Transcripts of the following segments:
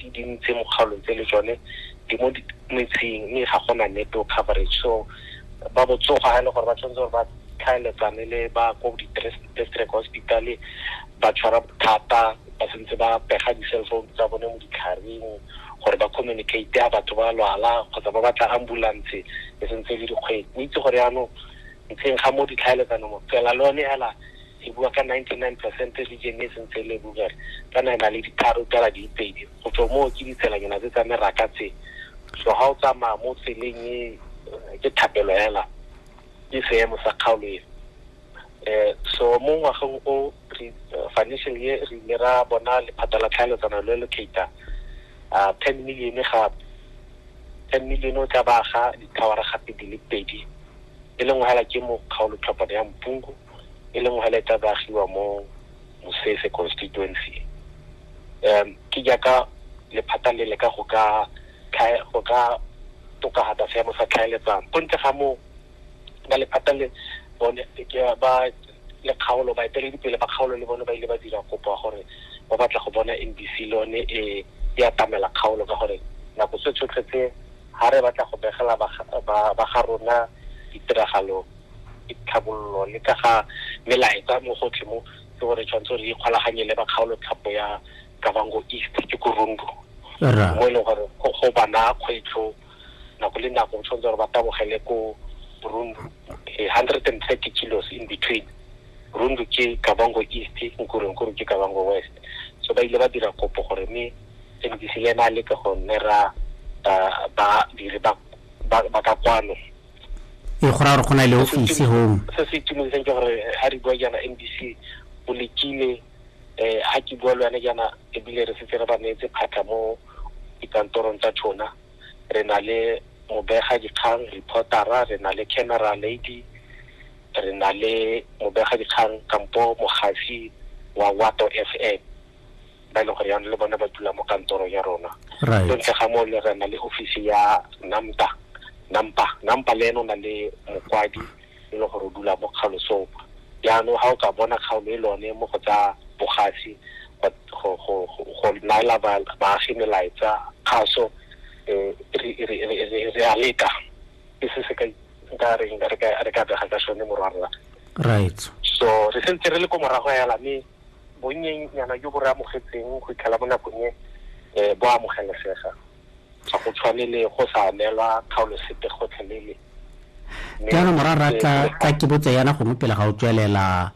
Di dintsi mo kgaolong tse le tsone di mo metseng mme ga gona network coverage so ba botsogo ha e le gore ba tshwanetse gore ba tlhaeletsane le ba ko district hospital ba tshwara bothata ba sentse ba pega di-cell phone tsa bone mo ditlharing gore ba communicate a batho ba lwala kgotsa ba batla ambulance e sentse le dikgwedi o itse gore yaanong ntlheng ga mo ditlhaeletsano mo fela le one hela e bua ka 99 percent region e sentse e le rural kana e na le ditharo tsala di pedi go tswa moo ke ditshelanyana tse tsa meraka tse so ga o tsamaya mo tseleng e ke thapelo hela ke seemo sa kgaolo e eh so mo ngwageng o re eh, financial year re ile ra bona lephata la tlhaeletsano le le cater a 10 million ga 10 million o tla ba ga dithawara gape di le pedi e leng hela ke mo kgaolo tlhopana ya mpungu e leng hela e tla baagiwa mo Mosese constituency um ke jaaka lephata le leka go ka go ka tokafatsa seemo sa tlhaeletsano go ntle ga moo ba lephata le bone ba le kgaolo baeteledipele ba kgaolo le bone ba ile ba dira kopo ya gore ba batla go bona NBC le yone e e atamela kgaolo ka gore nako tse tsotlhe tse ga re batla go begela ba ga rona ditiragalo ditlhabololo le ka ga melaetsa mo gotlhe mo ke gore tshwanetse re ikgolaganye le ba kgaolotlhapo ya kavango east ke ko rundu mo e leng gore go bana kgwetlho nako le nako tshwanetse gore ba tabogele ko rundu eh, hundred and thirty kilos in between rundu ke kavango east nkurenkuru ke kavango west so ba ile ba dira kopo gore mme mdc le ena a leke go nne ra badiri ba ka kwano e go ra gore go na le office home se se itumedisang ke gore ha re bua jaana NBC o lekile eh ha ke bua le wena jaana ebile re setse re ba neetse phatlha mo dikantorong tsa tshona re na le mobega dikgang reportera re na le camera lady re na le mobega dikgang kampo mogafi wa wato f m ba e leng gore yanong le bone ba dula mo kantorong ya rona so ntle ga moo le re na le ofisi ya namta nampa nampa le ene o na le mokwadi e leng gore o dula mo kgalosong jaanong ga o ka bona kgaolo e lone mo go tsa bogasi go naela baagi melaetsa kgaso um re a leka ke se se ka nka reng re ka bega ka sone morwarra right so re sentse re le ko morago hela mme Bonnyenyana jo bo re amogetseng go itlhela mo nakong e, bo a amogelesega. Ga go tshwane le go sa neelwa kgaolo sepe gotlhelele. Jaanong morara ka ka kebotsa yana gongwe pele ga o tswelela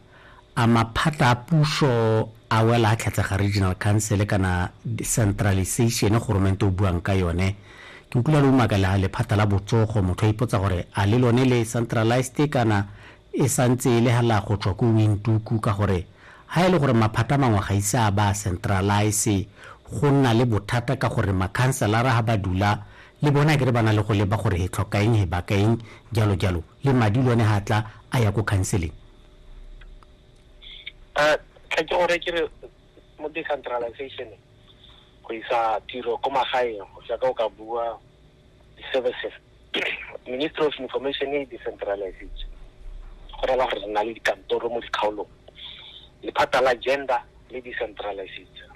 a maphatla a puso a wela a tlhatsega regional council kana centralization goromente o buang ka yone ke utlwile le umaka la lephata la botsogo motho a ipotsa gore a le lone le centralized kana e sa ntse e le hala go tswa ko Windhoek ka gore ha e le gore maphata a mangwe ga ise a ba a centralise go nna le bothata ka gore makhanselara ha ba dula le bone akere ba na le go leba gore he tlhoka eng he baka eng jalo jalo le madi lone ha tla a ya ko counseling eh, ke gore ke re mo decentralization go isa tiro ko magaeng go ka o ka bua di-services ministry of information e decentralization go rela gore re na le dikantoro mo dikgaolong lephata la gender le decentralization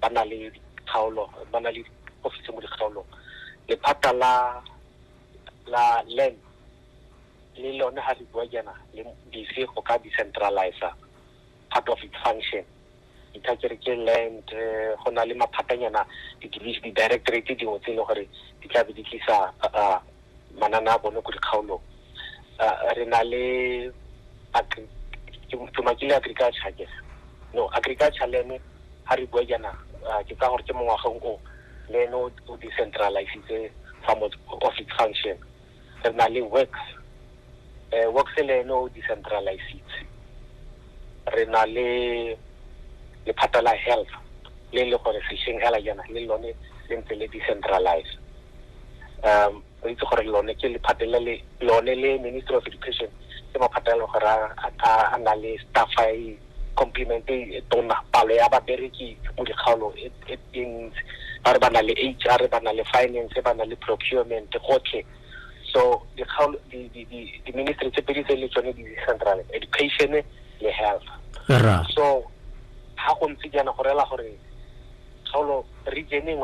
ba na le dikgaolo ba na le office mo dikgaolong lephata la la land le lone ga re bua jaana le busy go ka decentralizer part of its function itha ke re ke land eh, go na le maphatanyana di-directorate dingwe tse e le gore di tla be di tlisa manana a bone ko dikgaolong re na le tumakile agriculture ke no agriculture le ene ga re bua jaana ke tsa gore ke mongwageng o le ene o decentralizitse some of its function re na le works eh works le ene o decentralized re na le lephata la health le le gore sesheng hela yana le lone le ntse le decentralized um re itse gore lone ke lephata le le lone le ministry of education ke maphata le gore a na le staff e complement e tona palo ya babereki mo dikgaolong e things ba re ba na le HR ba na le finance ba na le procurement gotlhe so di-ministry tse pedi tse le tsone di central education le health so ga go ntse jaana go rela gore kgaolo region engwe